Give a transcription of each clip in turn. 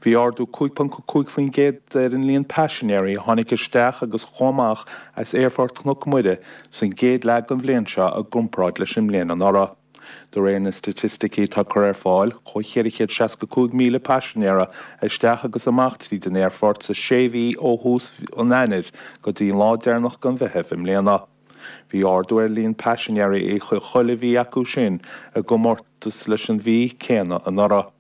Bhí ardú 5.5% ar an líon paisinéirí a tháinig isteach agus a chuaigh amach as Aerfort Chnoc Mhuire san gcéad leath den bhliain seo i gcomparáid leis an mbliain anuraidh. De réir na staitisticí atá curtha ar fáil, chuaigh 465,000 paisinéara isteach agus amach tríd an aerfort sa sé mhí ó thús an Eanáir go dtí an lá deireanach den Mheitheamh i mbliana. Bhí ardú ar líon paisinéirí i chuile mhí acu sin i gcomórtas leis an mhí céanna anuraidh.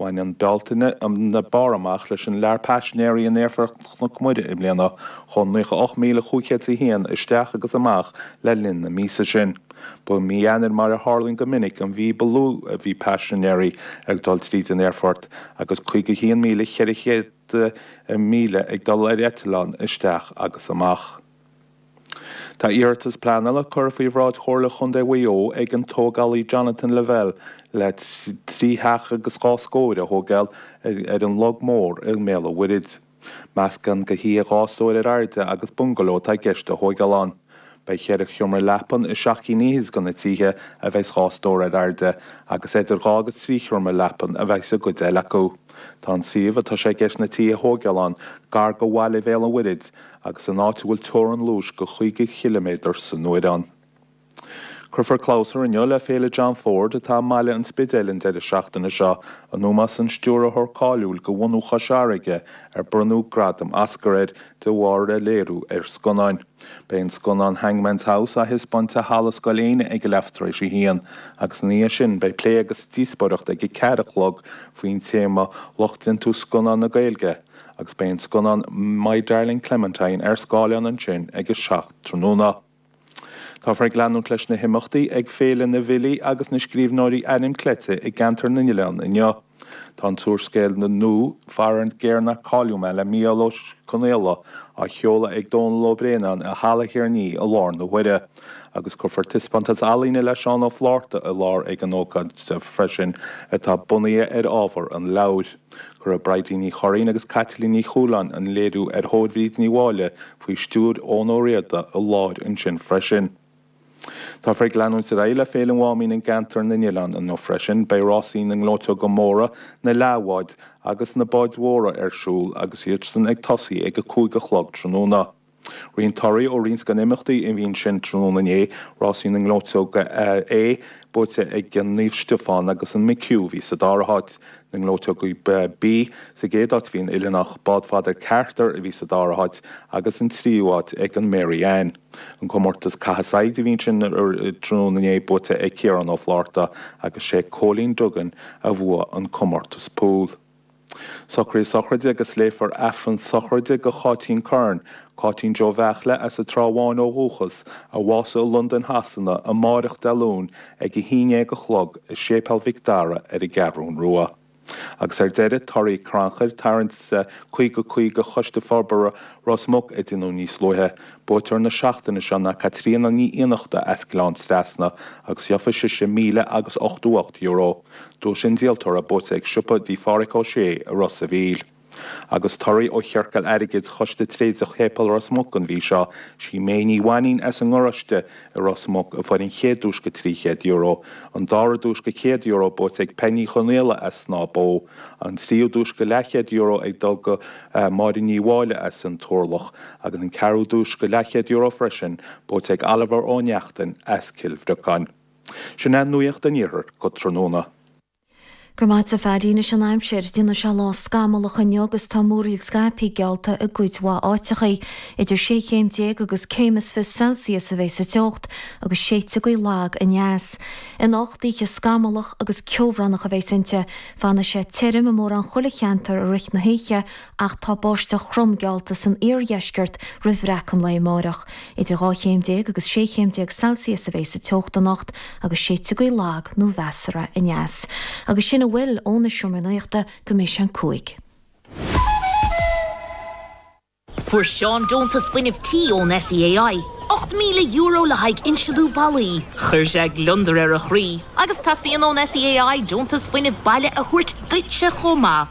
Bhain an Bealtaine an barr amach leis an lear paisinéirí in aerfort Chnoc Mhuire i mbliana, chuaigh 98,501 isteach agus amach le linn na míosa sin. Ba í mí Eanáir mar a tharlaíonn go minic an mhí ba lú a bhí paisinéirí ag dul tríd an aerfort, agus 51,400 míle ag dul ar eitleán isteach agus amach. Tá iarratas pleanála curtha faoi bhráid Chomhairle Chontae Mhaigh Eo ag an tógálaí Jonathan Lavelle le trí theach agus dhá scór a thógáil ar an Log Mór i mBéal an Mhuirthid. Meascán de thithe dhá stór ar airde agus bungaló atá i gceist a thógáil ann. Beidh ceithre sheomra leapan i seacht gcinn fhichead de na tithe a bheidh dhá stór ar airde agus idir dhá agus trí sheomra leapan a bheidh sa gcuid eile acu. Tá an suíomh atá sé i gceist na tithe a thógáil ann gar do bhaile Bhéal an Mhuirthid agus in áit a bhfuil teorainn luais de 50 chiliméadar san uair ann. Cuirfear clabhsúr inniu le Féile John Ford atá i mBaile an Spidéil an deireadh seachtaine seo, in ómós an stiúrthóir cáiliúil de bhunadh Chois Fharraige ar bronnadh gradam Oscar air de bharr a léiriú ar scannáin. Beidh an scannán Hangman's House á thaispeáint i Halla Scoil Éinne ag a leath tar éis a haon, agus ina dhiaidh sin beidh plé agus díospóireacht ag a ceathair a chlog faoin téama Lucht Déantús Scannán na Gaeilge, agus beidh an scannán My Darling Clementine ar scáileán ansin ag a seacht tráthnóna. Táthar ag leanúint leis na himeachtaí ag Féile na bhFilí agus na Scríbhneoirí Ainm Cleite i gCeantar na nOileán inniu. Tá an t-úrscéal nua Faraor Géar Nár Cailleadh Mé le Mícheál Ó Conaola á sheoladh ag Dónall Ó Braonáin i Halla Thír an Fhia i láthair na huaire agus cuirfear taispeántas ealaíne le Seán Ó Flátharta i láthair ag an ócáid freisin atá bunaithe ar ábhar an leabhair. Cuirfidh Bridie Ní Churraoin agus Caitlín Ní Chualáin an léiriú ar thóir Bhríd Ní Mháille faoi stiúir Eoin Ó Riada i láthair ansin freisin. Táthar ag leanúint ar aghaidh le Féile an Mháimín i gCeantar na nOileán inniu freisin. Beidh rásaí na ngleoiteoga móra, na leathbháid agus na báid mhóra ar siúl agus iadsan ag tosaí ag a cúig a chlog tráthnóna. Roinnt torthaí ó roinnt de na himeachtaí a bhí ansin tráthnóna inné, Rásaí na nGleoiteoga A buaite ag Naomh Stiofán agus an McHugh a bhí sa dara háit, na ngleoiteogaí B sa gcéad áit a bhí an Oileánach, Bád Phádraic Carter a bhí sa dara háit agus an tríú háit ag an Mary Ann. An comórtas caitheamh saighead a bhí ansin tráthnóna inné buaite ag Ciarán Ó Flátharta agus sé Cóilín Duggan a bhuaigh an comórtas pool. Socraithe sochraide agus léifear Aifreann sochraide do Cháitín Curran, Cáitín Joe Bheachle as an Trá Bháin ó dhúchas, a bhásaigh i Londain Shasana amáireach Dé Luain ag a haon déag a chlog i Séipéal Mhic Dara ar an gCeathrún Rua. Agus ar deireadh torthaí crannchuir, tarraingt 50 50 Choiste Forbartha Ros Muc a deineadh níos luaithe. Buaiteoir na seachtaine seo ná Caitríona Ní Iarnáin as Gleann Trasna agus gheofaidh sise míle agus ochtó ocht euro. Duais an díoltóra buaite ag siopa dí Phádhraic Ó Sé i Ros a' Mhíl. Agus torthaí ó Chiorcail Airgid Choiste Tréadach Shéipéal Ros Muc an mhí seo, sí May Ní Mhainín as an nGaráiste i Ros Muc a bhuaigh an chéad duais go €300, an dara duais go €100 buaite ag Peig Ní Chonaola as Snámh Bó, an tríú duais go leathchéad-euro ag dul go Máire Ní Mháille as an Turlach agus an ceathrú duais go leathchéad-euro freisin buaite ag Oliver Ó Neachtain as Cill Bhriocáin. Sin é nuacht an iarthair go tráthnóna. Go raibh maith agat Paddy, anois an aimsir, déanfaidh sé lá scamallach inniu agus tá múraíl scaipthe geallta i gcuid mhaith áiteachaí. Idir sé chéim déag agus céim is fiche Celsius a bheidh sa teocht agus séideáin ghaoithe lag aneas. Anocht oíche scamallach agus ceobhránach a bheidh inti. Fanfaidh sé tirim i mórán chuile cheantar i rith na hoíche ach tá báisteach throm geallta san iardheisceart roimh bhreac an lae amáireach. Idir 12 chéim agus 16 chéim Celsius a bheidh sa teocht anocht agus séideáin ghaoithe lag nó mheasartha aneas. Agus sin a bhfuil ó na seomraí nuachta go mbeidh sé an 5. Fuair Seán deontas fuinnimh tí ón SEAI, €8,000 le haghaidh insealú ballaí. Chuir sé gliondar ar a chroí agus teastaíonn ón SEAI deontas fuinnimh baile a thabhairt duitse chomh maith.